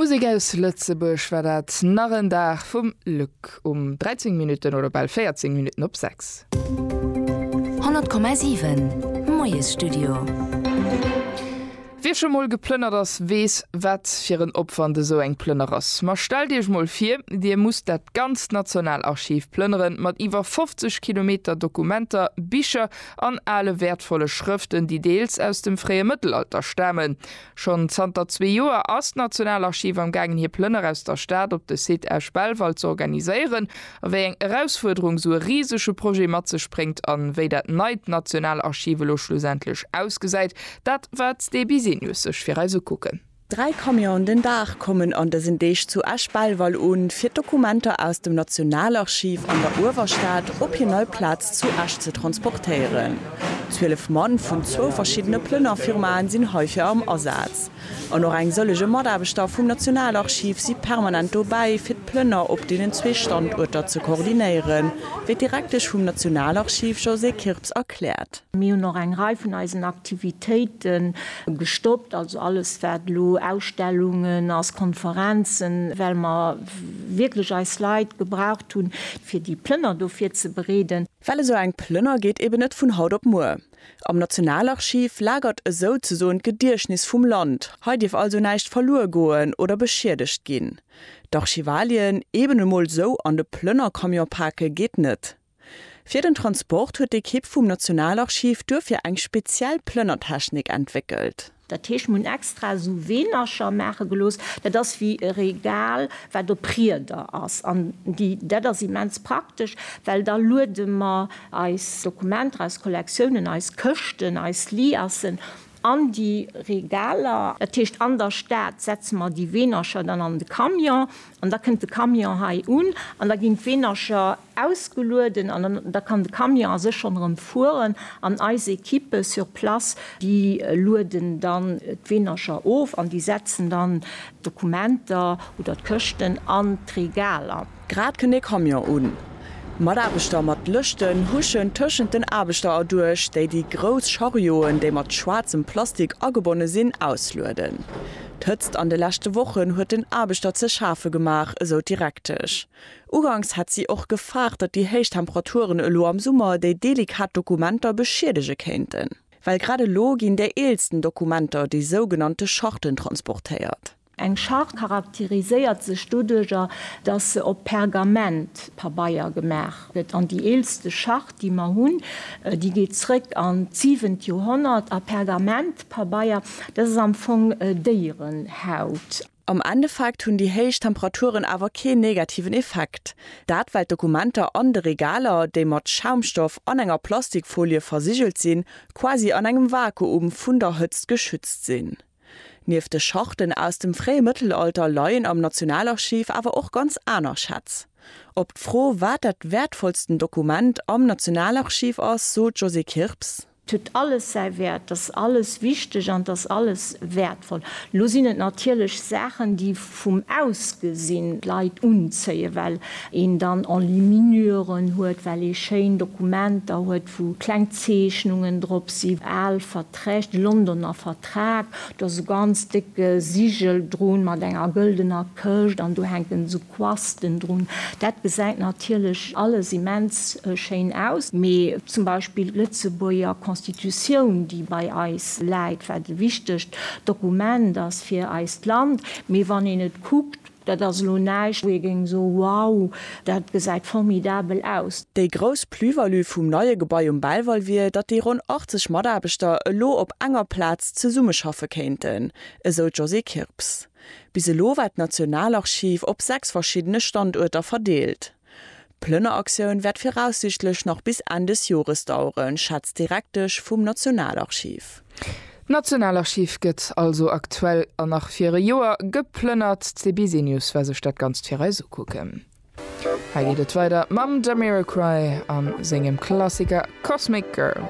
Musek aus Lëtzebuerg war dat nach en Dag vum Luc um 13 Minutten oder bal 14 Minutten op 6. 100,7 Moiesstudio. Wie scho mol geplënnert ass, weess wat fir en Opwand esou eng Plënner ass. Ma stellt iech mol vir, dir musst dat ganzt Nationalarchiv plënneren, mat iwwer 50 Kilometer Dokumenter, Bicher an ale wäertvolle Schrëften, déi deels aus dem fréie Mëttelalter stamen. Schonn zanter zwee Joer ass d'Nationalarchiv am gaangen hir Plënner aus der Stad op de Site Esch-Belval z'organiséieren. A wéi eng Erausfuerderung sou e risege Projet mat sech bréngt an wéi dat neit Nationalarchiv elo schlussendlech ausgesäit, dat waert d'Sté Bisenius sech fir eis ukucken. Dräi Camionen den Dag kommen an dësen Deeg zu Esch-Belval un, fir d'Dokumenter aus dem Nationalarchiv an der Uewerstad op hir nei Plaz zu Esch ze transportéieren. Zwielef Mann vun zwou verschiddene Plënnerfirmaen sinn heifir am Asaz. An och eng sëllege Mataarbechter vum Nationalarchiv si permanent dobäi, fir d'Plënner op deenen zwee Standuerter ze koordinéieren, wéi d'Direktesch vum Nationalarchiv Josée Kirps erkläert. Mir hunn och eng Rei vun eisen Aktivitéite gestoppt, also alles wat elo Ausstellungen ass, Konferenzen, well mer wierklech eis Leit gebraucht hunn, fir déi Plënner do virzebereeden. Well esou eng Plënner geet eben net vun haut op muer. Am Nationalarchiv lagert esou ze soen d'Gediechtnis vum Land, hei dierf also näischt verluer goen oder beschiedegt ginn. D'Archivalien eben emol esou an de Plënnercamion pake geet net. Fir den Transport huet d'Ekipp vum Nationalarchiv duerfir eng speziell Plënnertechnik entwéckelt. Dat heescht, mir hunn extra esou Weenercher maache gelooss, dat ass wéi e Regal, wat op Rieder ass. An déi, dat ass immens praktesch, well da luede mer eis Dokumenter, eis Kollektiounen, eis Këschten, eis Liassen An déi Regaler. Dat heescht, an der Stad setze mer déi Weenercher dann an de Camion an da kënnt de Camion hei un an da ginn d'Weenercher ausgelueden an da kann de Camion a sech schonn erëm fueren an eis Equippe sur place, déi lueden dann d'Weenercher of an déi setzen dann d'Dokumenter oder d'Këschten an d'Regaler. Grad kënnt ee Camion un. Mataarbechter mat Lëschten huschen tëschent den Aarbechter erduerch, déi déi grouss Charioen, déi mat schwaarzem Plastik agebonne sinn, auslueden. D'Hëtzt an de leschte Wochen huet den Aarbechter ze schafe gemaach, esou d'Direktesch. Uganks hätt si och gefaart, datt déi héich Temperaturen elo am Summer déi delikat Dokumenter beschiedege kéinten. Well grad elo ginn déi eelsten Dokumenter, déi sougenannte Charten, transportéiert. Eng Schart charakteriséiert sech doduerjer, datt se op Pergamentpabeier gemaach gëtt. An déi eelste Schart, déi mer hunn, déi geet zréck an d'siwent Joerhonnert. A Pergamentpabeier, dat ass am Fong Déierenhaut. Am Endeffekt hunn déi héich Temperaturen awer keen negativen Effekt. Dat well d'Dokumenter an de Regaler, déi mat Schaumstoff an enger Plastikfolie versigelt sinn, quasi an engem Vakuum vun der Hëtzt geschützt sinn. Nieft de Schachten aus dem fréie Mëttelalter leien am Nationalarchiv awer och ganz aner Schätz. Op d'Fro, wat dat wäertvollsten Dokument am Nationalarchiv ass, sot d'Josée Kirps. Et huet alles säi Wäert, et ass alles wichteg an et ass alles wäertvoll. Elo sinn et natierlech Saachen, déi. vum Ausgesinn d'Leit unzéien, well een dann Enluminuren huet, well ee schéin Dokumenter huet, wou kleng Zeechnungen drop sinn, al Verträg, de Londoner Vertrag, do ass e ganz décke Sigel drun, mat enger gëldener Këscht, an do hänken esou Quasten drun. Dat gesäit natierlech alles immens schéin aus, mee zum Beispill d'Lëtzebuerger Constitutioun, déi bei eis läit, wat e wichtegt Dokument ass fir eis, D'Land, mee wann een et kuckt, dat ass elo näischt, wou ee géing soen, wow, dat gesäit formidabel aus. Déi grouss Plus-value vum neie Gebai um Belval wier, datt déi ronn 80 Mataarbechter elo op enger Plaz zesummeschaffe kéinten, esou d'Josée Kirps. Bis elo war d'Nationalarchiv op sechs verschiddene Standuerter verdeelt. D'Plënneraktioun wäert viraussiichtlech nach bis Enn des Jores daueren, schätzt d'Direktesch vum Nationalarchiv. D'Nationalarchiv gëtt also aktuell an nach fir e Joer geplënnert. D'Seby Senius war sech dat Ganzt fir eis ukucken. Hei geet et weider mam Jamiroquai a sengem Klassiker Cosmic Girl.